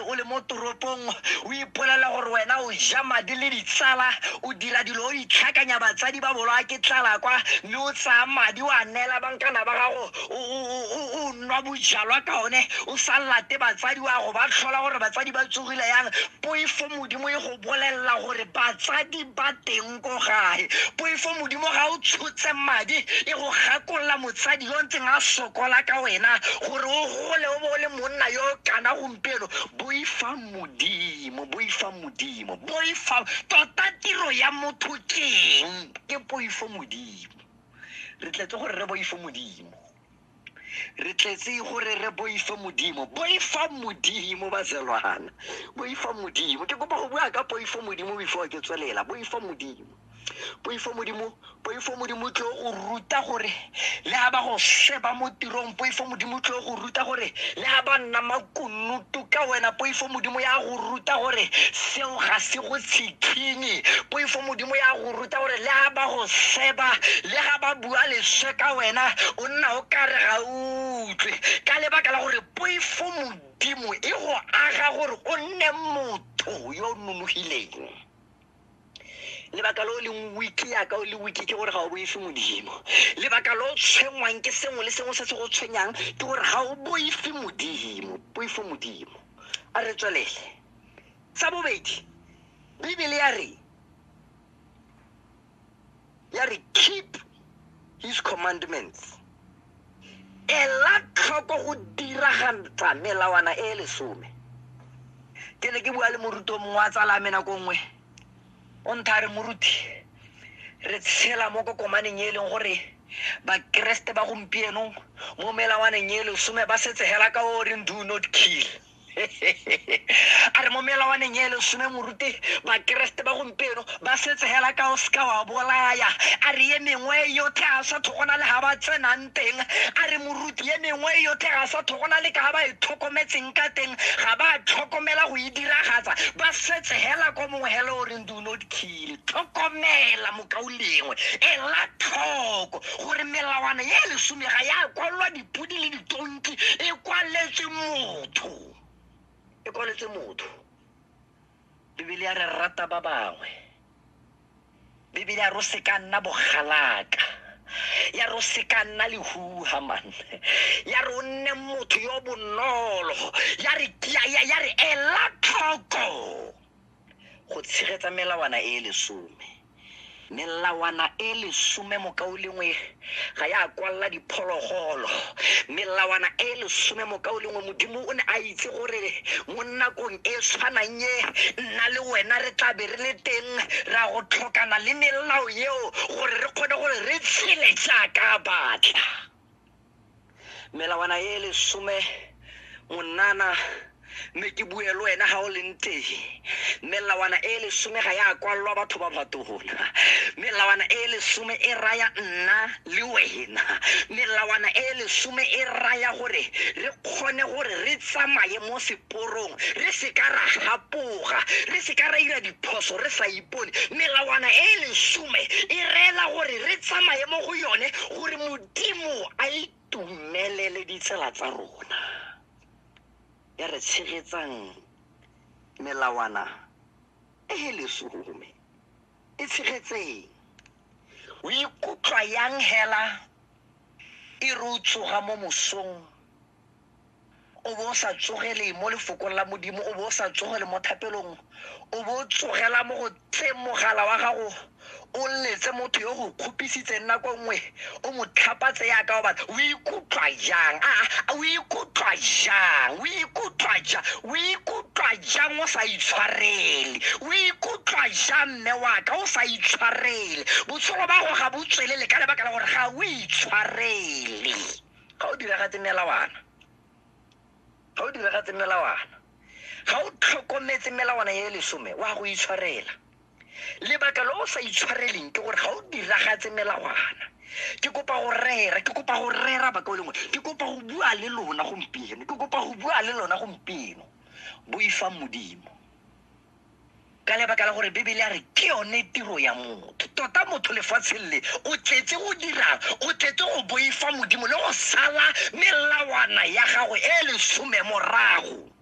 o le mo toropong o ipolela gore wena o ja madi le ditsala o dira dilo o itlhakanya batsadi ba bolwa ke tlala kwa mme o tsaya madi o a neela bankana ba gago o- o- o- o- o nwa bojalwa ka one o sa late batsadi wa go ba tlhola gore batsadi ba tsogile yang poifo modimo e go bolelela gore batsadi ba teng ko gae poifo modimo ga o tshotse madi e go gakolola motsadi yo ntseng a sokola ka wena gore o gole o bo o le monna yo kana gompieno boifang modimo boifang modimo boifang tota tiro ya motho keng ke poifo modimo re tletse gore re boifo modimo re tletse gore re boifa modimo boifa modimo bazelwana boifa modimo ke kopa go bua ka poifo modimo before ke tswelela boifa modimo poifo modimo poifo modimo tlo go ruta gore le ga ba go sheba mo tirong poifo modimo tlo go ruta gore le ga ba nna makunutu ka wena poifo modimo ya go ruta gore seo ga se go tshikinye poifo modimo ya go tota gore le ga ba go seba le ga ba bua leswe ka wena o nna o kare ga utlwe ka lebaka la gore poifo modimo e go aga gore o nne motho yo o nonogileng lebaka lo leng wiki yaka o le wiki ke gore ga o boife modimo lebaka lo tshwenngwang ke sengwe le sengwe se se go tshwenyang ke gore ga o boife modimo boife modimo a re tswelele sa bobedi bibele ya re ya re keep his commandments ela tlhoko go diragantsa melawana e e lesome ke ne ke bua le moruto mongwe wa tsala me nako nngwe o ntha re moruti re tshela mo kokomaneng e leng gore bakeresete ba gompieno mo melawaneng e lesome ba setse hela ka o reng do not kill a re mo melawaneng e lesome moruti bakeresete ba gompieno ba setse hela ka o seka wa bolaya a re ye mengwe e yotlhe a sa thogona le ga ba tsenang teng a re moruti ye mengwe e yotlhe ga sa thogona le ka ga ba e tlhokometseng ka teng ga ba tlhokomela go e diragatsa ba setse hela ko mongwe hela o reng do not kill tlhokomela mokaulengwe ela tlhoko gore melawana ye lesome ga ya kwalwa di dipodi le ditonki e kwaletse motho e kwaletse motho bibele ya re rata ba bangwe bibele ya ro se ka nna bogalaka ya ro se ka nna lehuha man ya re o nne motho yo bonolo ya re ya re ela tlhoko Go tshegetsa melawana e e lesome. Melawana e e lesome mokaulengwe ga ya kwalela diphologolo. Melawana e e lesome mokaulengwe Modimo o ne a itse gore mo nakong e e tshwanang e nna le wena re tla be re le teng ra go tlhokana le melao eo gore re kgone gore re tshele jaaka a batla. melawana e lesome monana mme ke bue le wena ga o leng teng melawana e lesome ga ya kwalelwa batho ba batona melawana e lesome e raya nna le wena melawana e lesome e raya gore re kgone gore re tsamaye mo seporong re se ka ra gapoga re se ka ra ira diphoso re sa ipone melawana e lesome e reela gore re tsamaye mo go yone gore modimo a itumelele ditsela tsa rona ya re tshegetsang melawana e e lesome e tshegetseng o ikutlwa yang hela e re o tsoga mo mosong o bo o sa tsogele mo lefokong la modimo o bo o sa tsogele mo thapelong o bo o tsogela mo go tse mogala wa gago o letse motho yo go kgopisitseng nako nngwe o mo tlhapatse yaka o batla o ikutlwa jang a a, o ikutlwa jang o ikutlwa jang o ikutlwa jang o sa itshwarele o ikutlwa jang mme waka o sa itshwarele botshelo ba go ga bo tswelele ka lebaka la gore ga o itshwarele ga o diragatse melawana ga o diragatse melawana ga o tlhokometse melawana e lesome wa go itshwarela lebaka lo o sa itshwareleng ke gore ga o diragatse melawana ke kopa go rera ke kopa go rera baka o lengwe ke kopa go bua le lona gompieno ke kopa go bua le lona gompieno boifang modimo ka lebaka la gore bebele a re ke yone tiro ya motho tota motho lefatsheng le o tletse go dirang o tletse go boifa modimo le go sala melawana ya gago e lesome morago